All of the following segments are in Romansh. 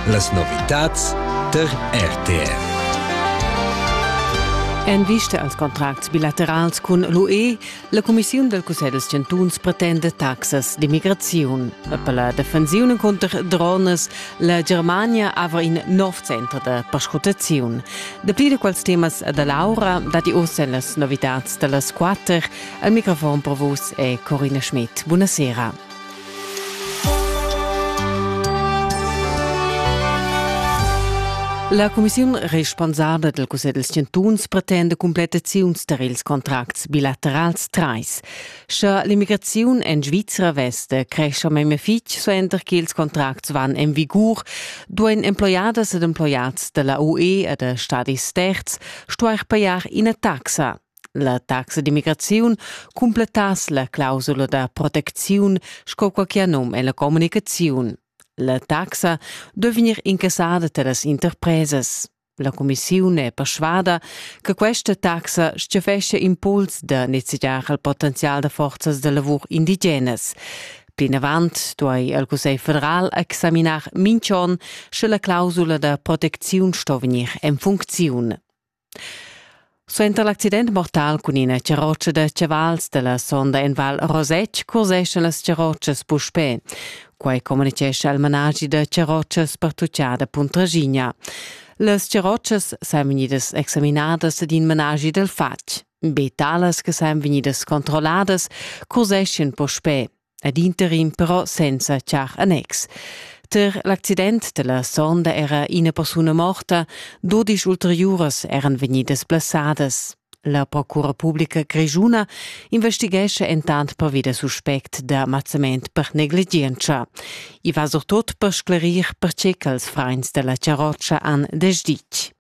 Las novitads der RTR. En vista als contracts bilaterals cun l'UE, la Cumissiun del Cussegl des Chantuns pretende taxas d'immigraziun. Per la defensiun cunter drones, la Germania haver in nov center da perscrutaziun. Dapli de quels temas da Laura dati ossa en las novitads da las quatter. Al microfon per vos è Corina Schmidt. Buonasera. La cumissiun responsabla del cussegl dels chantuns pretenda completaziuns tar ils contracts bilaterals trais. Sche l'immigraziun en Svizra vesta crescha meme fitg suenter che ils contracts van en vigur, duein emploiadas ed emploiats della UE e da stadis terz stuer pajar ina taxa. La taxa d'immigraziun cumplettass la clausula da protecziun sco quai che ha num en la communicaziun. La taxa dovri vegnir incassada da las interpresas. La cumissiun è persuada che questa taxa stgafescia impuls da nezegiar il potenzial da forzas da lavur indigenas. Plinavant duai il Cussegl federal examinar mintg'onn sche la clausula da protecziun sto vegnir en funcziun. Suenter l'accident mortal cun ina charrotscha da chavals dalla sonda en Val Rosetsch curseschan las charrotschas puspè. Quai communitgescha il managi da charrotschas pertuccada Puntraschigna. Las charrotschas san vegnidas examinadas ed in managi dal fatg. Be talas che san vegnidas controlladas curseschan puspè. ed interim però senza char annex. Ter l'accident della sonda era ina persuna morta, dodisch ulteriuras eran vegnidas blessadas. La procura pubblica grischuna investighesce entant pervi da suspect da mazzament per negligienza. I va surtut per sclerir perché ch'als frains della charrotscha han desditg.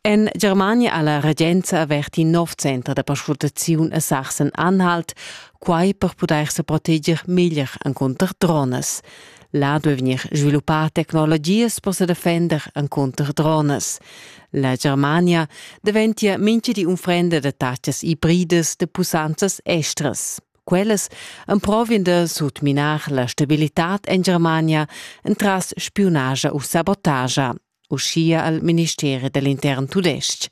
En Germania ha la regenza avert in nov center da perscrutaziun a Sachsen-Anhalt, quai per pudair se proteger meglier encunter drones. Là duai vegnir sviluppà tecnologias per se defender encunter drones. La Germania daventia mincha di unfrenda da tachas ibridas da pussanzas estras. Quellas emprovien da sutminar la stabilitad en Germania entras spiunaja u sabotagia, uschia al ministeri da l'intern tudestg.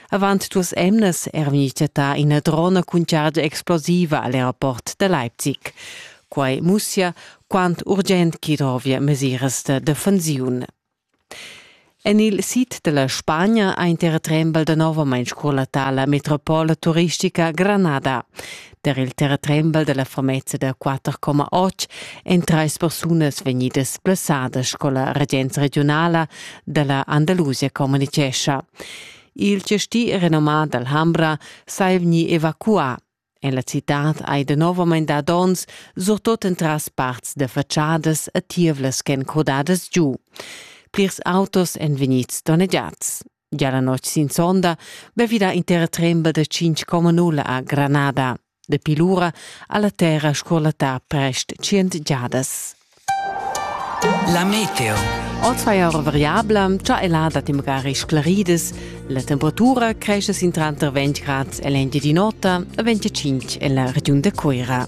Avant duas emnas era vegnì chattà ina drona cun chargia explosiva a l'aeroport da Leipzig. Quai mussia quant urgent ch'i drovia mesiras da defensiun. En il sid della Spagna ha in terratrembel da novamain scorlatà la metropola turistica Granada. Der il terratrembel della famezza da 4,8 ein treis persunas vegnidas blessadas, sco la regenza regionala della Andalusia communicescha. Il gestì renomà dall'Hambra sai vegni evacuà. En la citad hai de novament dad ons, surtot entras parts de faciadas e tievlas ch'en crodadas giu. Plirs autos èn vegnids donnegiads. Già la notg sin sonda be vida intera tremba da 5,0 a Granada. Dapi lura ha la terra scorlattà prest 100 giadas. La meteo. Oz fa era variabla, cha è là dat magari sclarides. La temperatura cresce sin tranter 20 grad e l'engi di notte e 25 e la regiun de Cuira.